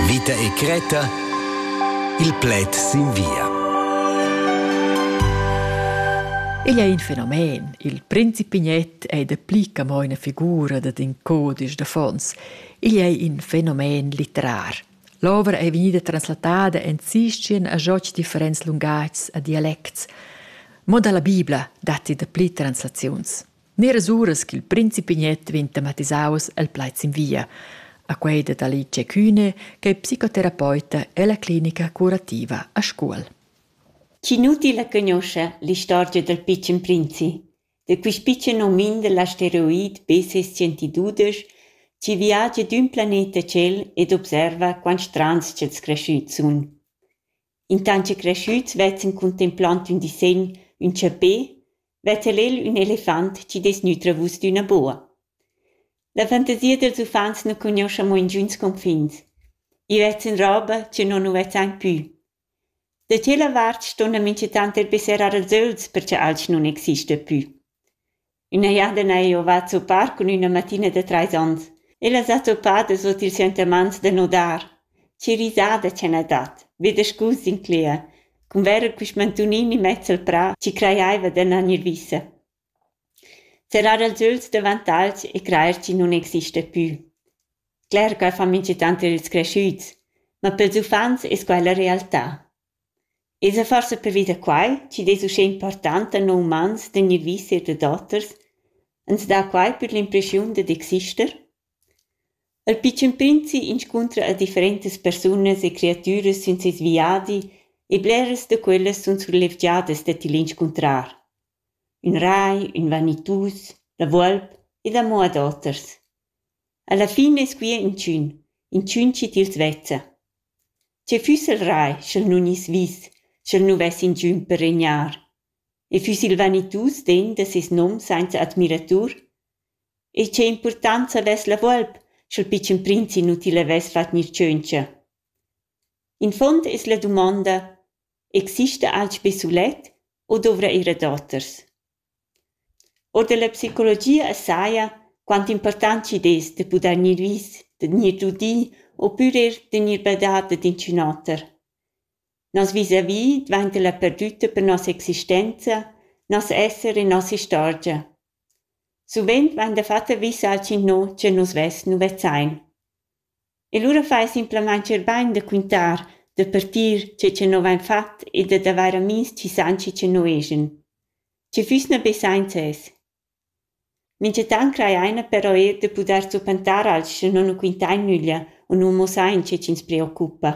Vita e cretta. Il pled sin via. Igl è in fenomen. Il principignet è da pli che mo una figura dad in codice d'affons. Igl è in fenomen litterar. L'ovra è vegnida translatada en sistien a joc differents lungats a dialects. Mo dalla Bibla datti da pli translaziuns. Neras uras ch'il principi Gnet vegn tematisaus el plaid sin via. A quei dat Alice Kühne, che è psicoterapeuta ella clinica curativa a Scuol. Cinuti la conosce l'istorgia dal pitschen prinzi. Da quist pitschen homin dal asteroid BC-112 chi viagia d'ün planeta tschel ed observa quant strands ch'els creschüts sun. intant che creschüts vezzan contempland ün disegn ün chapè vezza el il ün elefant chi dess nütrer vus d'üna boa. La fantasia dels uffants nu cugnuoscha mo ingüns confins. I vezzan roba chi non nu vezzan pü. Da tschella vart ston la minchatant er besserar als öls perche alch nun exista pü. üna jardina eau va a zuppar cun üna mattina da trais ons. Ella s'ha zuppada sut ils sentimaints da nudar. Che risada cha n'ha dat, be da scus incler, cun verer quist mantunini mezz al prà chi crajaiva d'annar gnir vissa. Serrar els öls davant alch e crajer chi nun exista pü. Cler ch'eu fa minchatant ir ils creschüts, ma pels uffants es quai la realtà. Esa forsa pervi da quai chi'd es uschè important da non umans gnir vis eir dad oters, ans dà quai pür l'impreschiun dad exister? Il pitschen prinzi inscuntra a differentas persunas e creatüras sün seis viadi e bleras da quellas sun surlevgiadas da til inscuntrar. Ün rai, ün vanitus, la volp ed amo ad oters. Alla fin es quia inchün, inchün chi tils vezza. Tgei fuss il rai sch'el nun iss vis, sch'el nu vess ingiün per regnar? E füss il vanitus degn da ses nom sainza admiratur? E che importanza avess la volp, sch'el pitschen prinz inutil avess fat gnir tschöntscha? In fond es la dumonda: exista alch be sulet o dovra ir a doters? Or dalla psicologia saja quant impurtant chi'd es da pudair gnir vis, da gnir udì opür eir da gnir badà dad inchün oter. Nos vis-à-vis dvainta la perdütta per nossa existenza, nos esser e nossa istorgia. Suvent vain dafatta vis alch innò cha nus vess nu vezzain. E lura fai simplamain scherbain da quintar, da partir tge che nus avain fatg e dad avair amihs chi san chi che nus eschan. Sche füss na be sainza es. Minchatant crajaina però eir da pudair zuppantar alch sche non nu quintain nüglia u nu mussain che chi'ns preoccupa.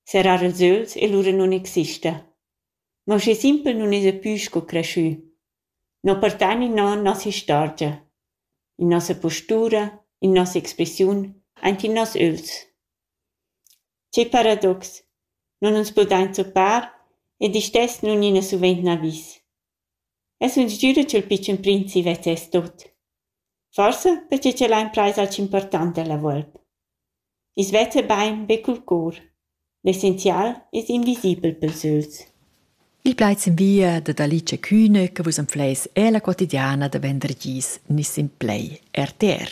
Serrar els öls e lura nun exista. Ma uschè simpel nun esa pü sco creschü. Non portan in non nossa istorgia, in nossa postura, in nossa expressiun, aint in noss ögls. Che paradox! Non uns podain zuppar ed istess nun ina suvent n'avis. E sun sgüra cha'l pitschen prinzi vezzess tot. Forsa perche ch'el ha imprais alch important dalla volp. I's vezza bain be cul cour. L'essenzial es invisibel pels ögls. Il plaid s'invia dad Alice Kühne che vus anfleis ella quotidiana da vendergis Niss in Play, RTR.